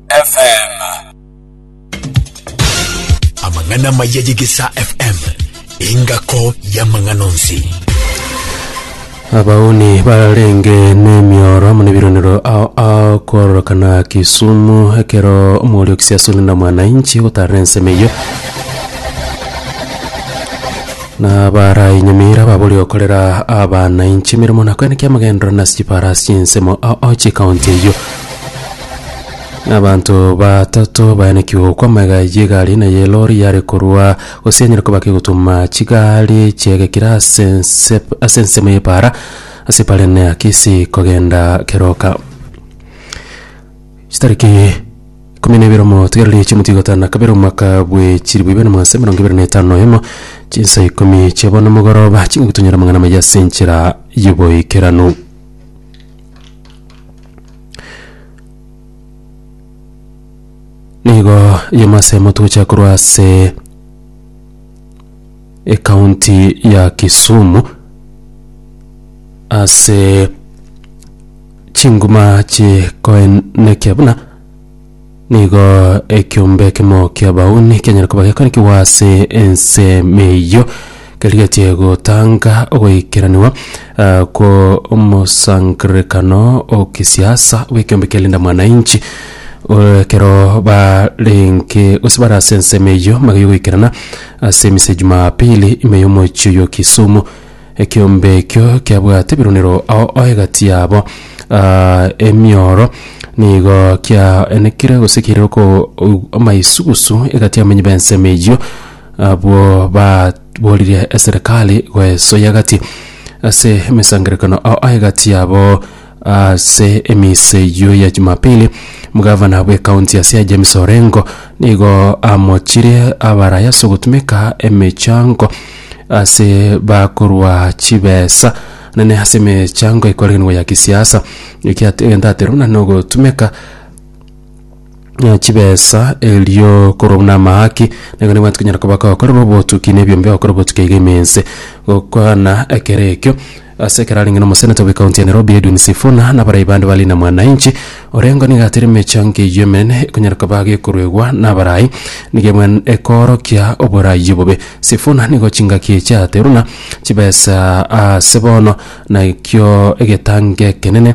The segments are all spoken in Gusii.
FM. Amang'ana maya y'Egesa FM, engako y'amang'ana onsi. abauni barenge n'emioro amo nebironero ao ao kororokana kisumu ekero omorioki siasoni na mwananchi gotarera ensemo eyio na barainyamira babori gokorera abananchi emeremo nakwene kiamagendero nasi chiparasi ensemo ao ao chikaunti eyio Abanto batato bayanekigwe gokwa amaiga ayio egari eye na y'elori yare korwa gose yanyare koba kegotuma chigari chiegekire ase ense ase ensemo y'epaara ase epaara ende ya Kisii kogenda keroka. Chitariki ikomi na ibere omotigereri echi omotwe gatano na kabere omwaka bwe chilifu ibere na magana ase emerongo ebere na etano na oyomo chinsa ikomi chia bono mogoroba ching'aki tonyore amang'ana amaya ase enchera y'oboikeranu. Nigo yemo ase motugocha korwa ase ekaunti ya Kisumu ase chinguma chikoenekia buna Nigo ekiombe ekemo ki'abauni kianyare koba gekarikigwa ase ensemo eyio kerigetie gotanga ogoikeraniwa ah, kw'omosangererekano okisiasa bw'ekiombe kia Linda Mwananchi eh, ekero barenge gose bare ase ensemo eyio magaiyo goikerana ase emisa ya Jumapili ime y'omochie oyo Kisumu Ekeombe ekio kiabwate ebirunero ao ao egati yabo ah, emioro nigo kiaenekire gose kiaire ko- u- amaisugusu egati y'abamenyi b'ensemo eyio abwo baboririe eserekari goesoya gati ase emesangererekano ao ao egati yabo Ase emisa eyio ya Jumapili, omogavana bw'ekaunti ya Siaya James Orengo nigo amochire abaraya ase ogotumeka emechango ase bakorwa chibesa nene ase emechango ekoregenwa ya kisiasa ekia egento aterwa buna nogotumeka eh, chibesa erio korwa buna amahaki nigo nabwate konyara koba gokorera obotuki na ebiombe ogokora obotuki aiga ime ense gokwana ekero ekio Ase ekero arenge nomoseneta bw'ekaunti ya Nairobi Edwin Sifuna nabarai bande ba Linda Mwananchi, Orengo nigo atire emechando eyio emenene ekonyara koba gekoruegwa nabarai nigo emwen ekoorokia oborai obobe. Sifuna nigo chingaki echateruna chibesa ase bono nakio egetango ekenene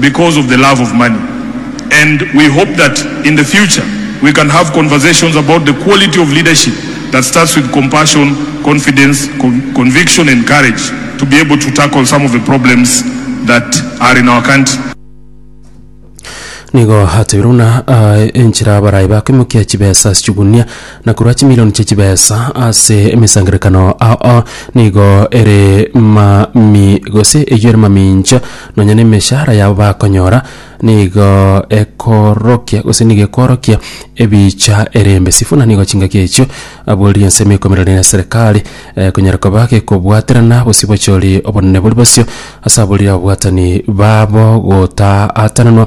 because of the love of money and we hope that in the future we can have conversations about the quality of leadership that starts with compassion, confidence, conviction and courage to be able to tackle some of the problems that are in our country. Nigo atebire buna aye enchera abarai bakoimokia chibesa ase chigunia na korwa chimilioni chie chibesa ase emesangererekano ao nigo ere mami gose eyio ere mamincha Nonya nemeshahara yabo bakonyora nigo ekorokia gose nigo ekworokia ebicha erembe. Sifuna nigo chingaki echio aboririe ensemo ekoimererwa ne serikali eh, konyara koba gekobwaterana bosio bochori obonene bori bosio ase aborire ababwatani babo gotaatananwa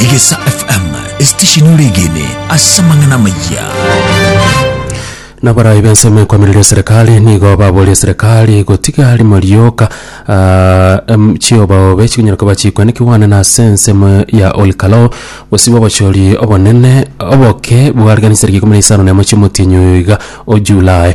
Egesa FM, esitesheni oregene ase amang'ana amayia. Naborai b'ensemo ekomireria eserekari nigo baboria eserekari gotiga rimo rioka ah, em, chiobaobe chikonyara koba chikwane kigwane na ase ensemo ya Olkalo gosibwa obochori obonene oboke bwariganisire gikumira isano nemo chiomotienyi oiga o July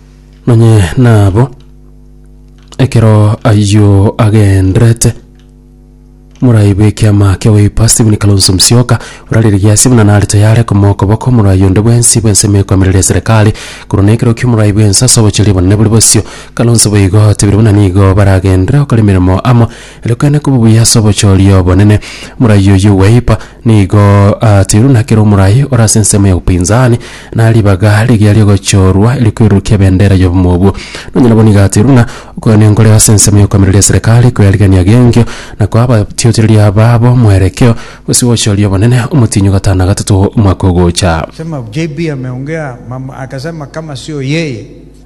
Nonye nabo ekero ayio agenderete moraibe ekiama kia goipa Stephen Kalonzo Musyoka orarigiria ase buna nare tayare komoa okoboko omorai onde bwensi bw'ensemo ekoamerera eserekari korwa na ekero ki'omorai bwensi ase obochori obonene bore bosio. Kalonzo boigo otebire buna nigo baragenderere gokora emeremo amo Erokana koba buya ase obochori obonene. Morai oyio Uweipa nigo atiru na kera omorai ore ase ensemo ya upinzani na ribaga rigiya riogochorwa erikwerurukia ebendera y'obomo obwo. Nonye nabo nigo atiru ng'a okoyana enkoro ase ensemo y'okoamereria eserekari kwerigereria g'enkio na koa abatiochereri ababo mwerekeo gose obochori obonene omotienyi ogatana gatato omwaka ogocha. Akasema JB ameongea mambo, akasema kama sio yeye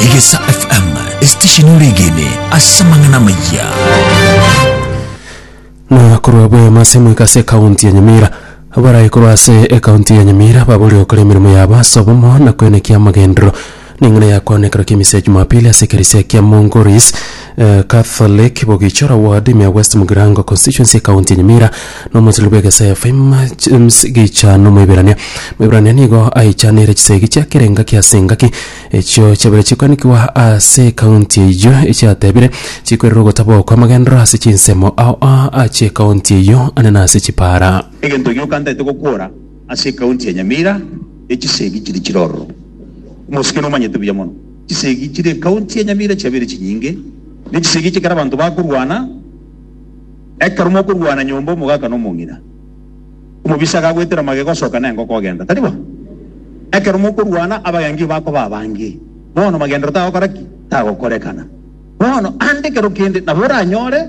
Egesa FM, esitesheni ore egene ase amang'ana amaya. Muna korwa bwema ase moika ase ekaunti ya Nyamira abarae korwa ase ekaunti ya Nyamira baborire gokora emeremo yabo ase obomo na kwenekia amagendero neng'ina ya koanekero kia misa ya Jumapili ase ekerisia kia Mongoris Catholic bogichora ward ime ya West Mugirango constituency ekaunti ya Nyamira na omochilori bw'egesaya Faima James Gichano Moiberania. Moiberania nigo aichanire chisegi chia kera engaki ase engaki echio chiabaire chikoanigwa ase ekaunti eyio echiatebire chikoirera ogotaba okwo amagenderero ase chinsemo ao aa achia ekaunti eyio ane na ase chipara. Egento gioka ntaete gokora ase ekaunti ya Nyamira echisegi chiri chire ororo. Omosike nomanyete buya mono. Chisegi chire ekaunti ya Nyamira chiabeire chinyinge, ne chisegi echi ekero abanto bakorwana, ekero mokorwana nyomba omogaka na omong'ina, omobisa agagwetera magega osoka na engoko ogenda, tari bo? Ekero mokorwana abagengi bakoba abange, bono magendero tagokora ki? Tagokorekana. Bono ande ekero kende nabo oranyore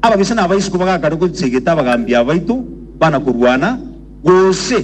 ababisa na abaisiko bagakare gosegeta abagaambi abaito bana korwana, gose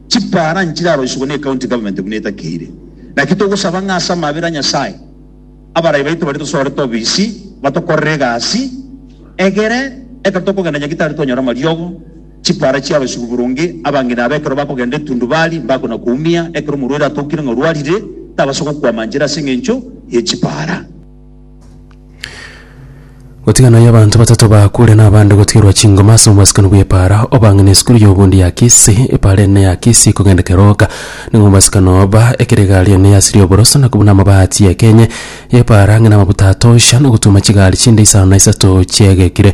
Chipaara nchiraroisigwe ne county government buna etakeire. Naki togosaba ng'a ase amabera a Nyasae, abarai baito baria tosorete obisi batokorere egasi egere ekero tokogenda nyagetari twanyore amariogo, chipaara chiaroisigwe boronge. Abang'ina aba ekero bakogenda etundubari mbakonakoumia. Ekero omorwaire atokire ng'a orwarire, tabasa gokwama nchera ase engencho ye chipaara. Gotigana yo abanto batato bakure na abande gotigerwa chingoma ase omwasikano bw'epaara obang'e na esukuru y'obondi ya Kisii. Epaara ende ya Kisii ekogenda keroka nigo omwasikano oba ekero egari ende yasiria oboroso na kobuna amabaati y'ekenye y'epaara ang'e na amabuta atosha na ogotuma chigari chinde isano na isato chiegekire.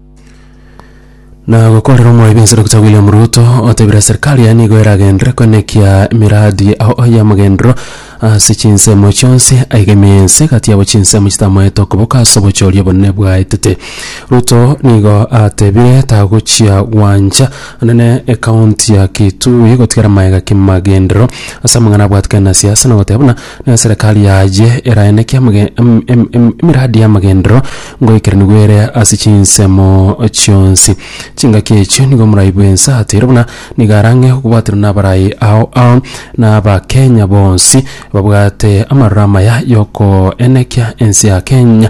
Na gokorera omwaibi ensoro gocha William Ruto otebire serikali yaye nigo eragenderere koenekia emiradi ao y'amagenderero ase chinsemo chionsi aigemie ense egati yabo chinsemo chitamaete okoboka ase obochori obonene bwaetete. Ruto nigo atebire tagochia gwancha nene ekaunti ya Kitui gotigera maega kimagenderero ase amang'ana abwatete na siasa na goteba buna Na enserekari yaye eraeneke amage- em- em- em- emiradi y'amagenderero ngoikeranigwe ere ase chinsemo chionsi. Chingaki echio nigo omorai bw'ense ateire buna nigo arang'e okobwaterwa n'abarai ao ao na Abakenya bonsi babwate amaroro amaya y'okoenekia ense ya Kenya